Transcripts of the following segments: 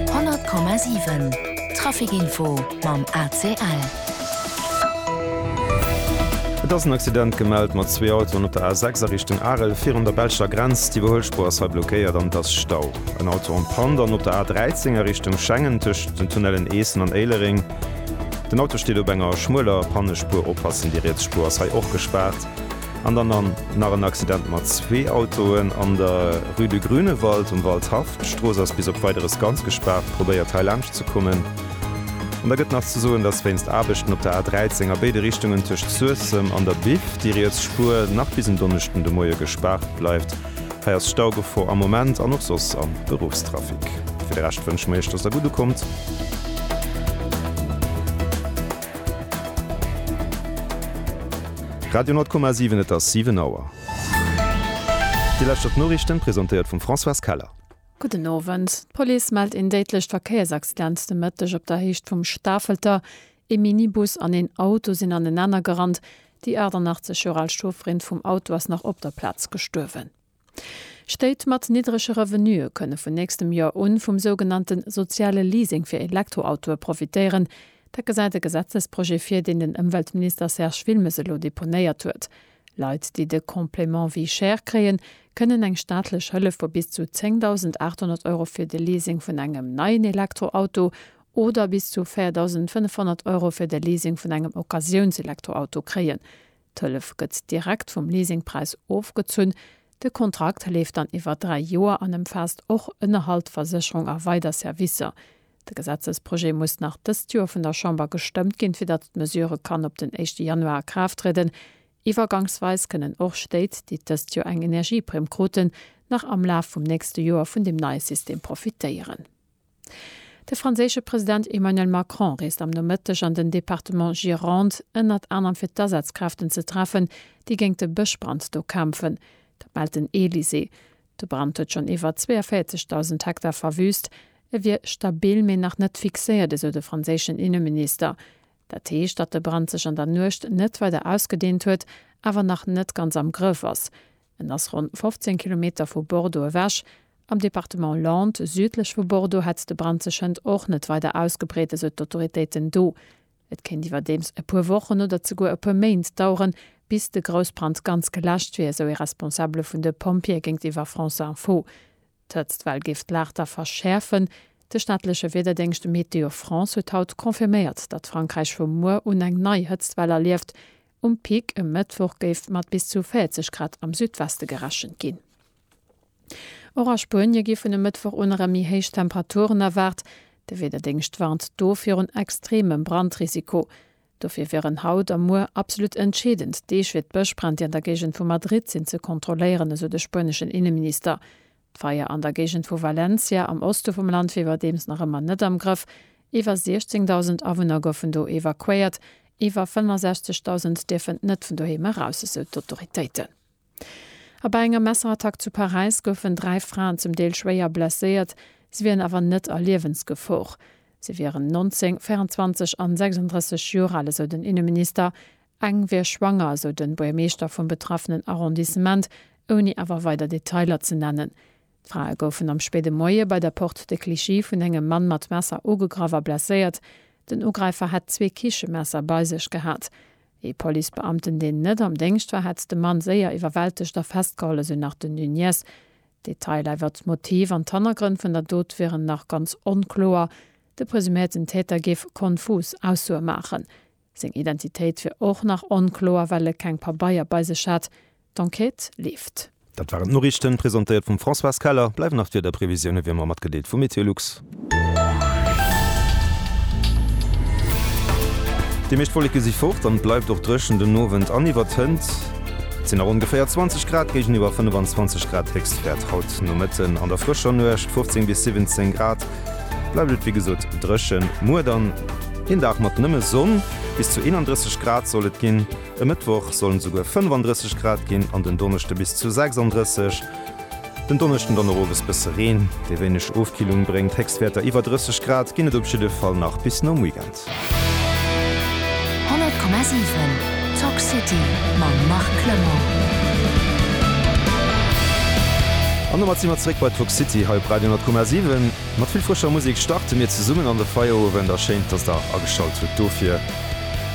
100,7 Trafic Info mam ACL. Et ass en Accident gemellt mat zwee Autoen op der A6 a Richtung Arel virun der belscher Grenz. Déi Iwwerhuelspur ass hei blockéiert an et ass Stau. En Auto en Panne dann op der A13 a Richtung Schengen tëscht den Tunnellen Eessen an Éilereng. Den Auto steet op enger schmueler Pannespur, oppassen, déi riets Spur ass hei och gespaart. An dann an nach en Accident mat zwee Autoen an der Rue de Grünewald um Waldhaff. D'Strooss ass bis op Weideres ganz gespaart. Probéiert hei laanscht ze kommen. An da gëtt nach ze soen, dass wéinst Aarbechten op der A 13 a béide Richtungen tëscht Suessem an der Biff déi riets Spuer nach bis en Donneschden de Moie gespaart bleift. Hei ass Staugefor am Moment an och soss am Beruffstrafic. Fir de Rescht wënsche mir Iech, dass der gutt ukommt. Radio 10,7 Et ass 7 Auer. Déi lescht op d'Noriichten, presentéiert vum Françoise Keller. Gudden Owend. D'Police mellt een déidlecht Verkéiersaccident de Mëtteg op der Héicht vum Stafelter. Ee Minibus an een Auto sinn anenaner gerannt. Déi 88 Joer al Chaufferin vum Auto ass nach op der Plaz gestuerwen. Stéit mat niddrege Revenuë kënne vun nächstem Joer un vum sougenannte soziale Leasing fir Elektroautoe profitéieren. Dat gesäit e Gesetzesprojet vir, deen den Ëmweltminister Serge Wilmes elo deponéiert huet. Leit, déi de Complément vie chère kréien, kënnen eng staatlech Hëllef vu bis zu 10.800 Euro fir de Leasing vun engem neien Elektroauto oder bis zu 4.500 Euro fir de Leasing vun engem Occasiounselektroauto kréien. D'Hëllef gëtt direkt vum Leasingpräis ofgezunn. De Kontrakt leeft dann iwwer dräi Joer an ëmfaasst och Ënnerhalt, Versécherung a weider Servicer. De Gesetzesprojet muss nach dëst Joer vun der Chamber gestëmmt ginn, fir datt d'Mesure kann op den éischte Januar a Kraaft trieden. Iwwergangsweis kënnen och Stéit, déi dëst Joer eng Energieprimm kruten, nach am Laf vum nächste Joer vun deem neie System profitéieren. De franséische President Emmanuel Macron reest am Nomëtteg an den Departement Gironde, ënnert anerem fir d'Asazkräften ze treffen, déi géint de Bëschbrand do kämpfen. Dat mellt den Elysée. De Brand huet schonn iwwer 42.000 Hektar verwüüst. E wier stabil, mee nach net fixéiert, esou de franséischen Inneminister. Dat heescht, datt de Brand sech an der Nuecht net weider ausgedeent huet, awer nach net ganz am Grëff ass. En ass ronn 15 Kilometer vu Bordeaux ewech. Am Departement Landes, südlech vu Bordeaux, hätt de Brand sech hënt och net weider ausgebreet, esou d'Autoritéiten do. Et kéint iwwerdeems e puer Wochen oder zeguer e puer Méint daueren, bis de Groussbrand ganz geläscht wier, esou ee Responsabele vun de Pompjeeë géintiwwer France Info. D'Hëtztwell géif d'Laagda verschäerfen. De staatleche Wiederdéngscht Météo France huet haut confirméiert, datt Frankräich vu muer un eng nei Hëtztwell erlieft. Um Pic e Mëttwoch géif mat bis zu 40 Grad am Südweste gerechent ginn. Och a Spuenie gi vun e Mëttwoch un erëm méi héich Temperaturen erwaart. De Wiederdéngscht warnt do virun extremem Brandrisiko. Dofir wieren haut a muer absolut entscheedend Deeg fir d'Bëschbränn, déi an der Géigend vu Madrid sinn, ze kontrolléieren, esou de spueneschen Inneminister. D'Feier an der Géigend vu Valencia am Oste vum Land wier iwwerdeems nach ëmmer net am Grëff. Iwwer 16.000 Awunner goufen do evakuéiert, iwwer 65.000 dierfen net vun doheem eraus, esou d'Autoritéiten. A bei enger Messerattack zu Paräis goufen dräi Fraen zum Deel schwéier blesséiert. Si wieren awer net a Liewensgefor. Si wieren 19, 24 an 36 Joer al, esou den Inneminister. Eng wier schwanger, sou de Buergermeeschter vum betraffenen Arrondissement, ouni awer weider Detailer ze nennen. D'Frae goufen am spéide Moie bei der Porte de Clichy vun engem Mann mat Messer ugegraff a blesséiert. Den Ugräifer hätt zwee Kichemesser bei sech gehat. Ee Policebeamten, deen net am Déngscht war, hätt de Mann séier iwwerwältegt a festgeholl, esou nach den Nunez. D'Detailer iwwert d'Motiv an d'Hannergrënn vun der Dot wieren nach ganz onkloer. De presuméierten Täter géif konfus Aussoe maachen. Seng Identitéit wier och nach onkloer, well e keng Pabeier bei sech hat. D'Enquête leeft. Dat waren d'Noriichten, presentéiert vum Françoise Keller. Bleiwen nach d'Wiederprevisioune wéi ëmmer matgedeelt vu Meteolux. Déi meescht Wolleke si fort an et bleift och dréchen den Owend an iwwert Hënt. Et sinn nach ongeféier 20 Grad géigeniwwer 25 Grad Héchstwäert haut no Mëtten. An der frëscher Nuecht 15 bis 17 Grad bleift et wéi gesot dréchen. Muer dann. Een Dag mat nëmme Sonn, bis zu 31 Grad soll et ginn. E Mëttwoch sollen et esouguer 35 Grad ginn an den Donneschde bis zu 36. Den Donneschden dann och owes bësse Reen, dee wéineg Ofkillung bréngt. Héchstwäerter iwwer 30 Grad ginn et op jidde Fall nach bis nom Weekend. 100,7 Talk City mam Marc Clement. An domat si mer zeréck bei Talk City hei op Radio 10,7. Mat vill frëscher Musek starte mir zesummen an de Feierowend a schéin, dass der ageschalt hutt dofir.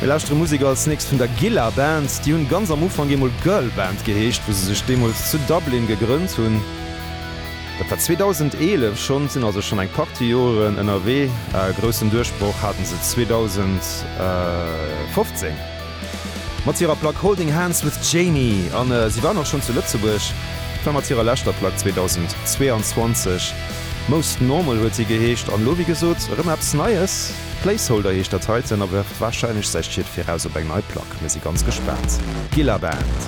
Mir lauschtere Musek als nächst vun der Gilla Band. Déi hunn ganz am Ufank eemol Girl Band geheescht, wou se sech deemools zu Dublin gegrënnt hunn. Dat war 2011 schonn, sinn also schonn eng Partie Joren ënnerwee. E groussen Duerchbroch haten se 2015. Mat hirer Plack Holding Hands with Jamie, an si waren och schonn zu Lëtzebuerg, war mat hirer leschter Plack 2022, Most Normal huet si geheescht, an elo wéi gesot erëm eppes Neies, Placeholder heescht dat heiten, a werft warscheinlech säi Schied viraus op eng nei Plack. Mir si ganz gespaant. Gilla Band.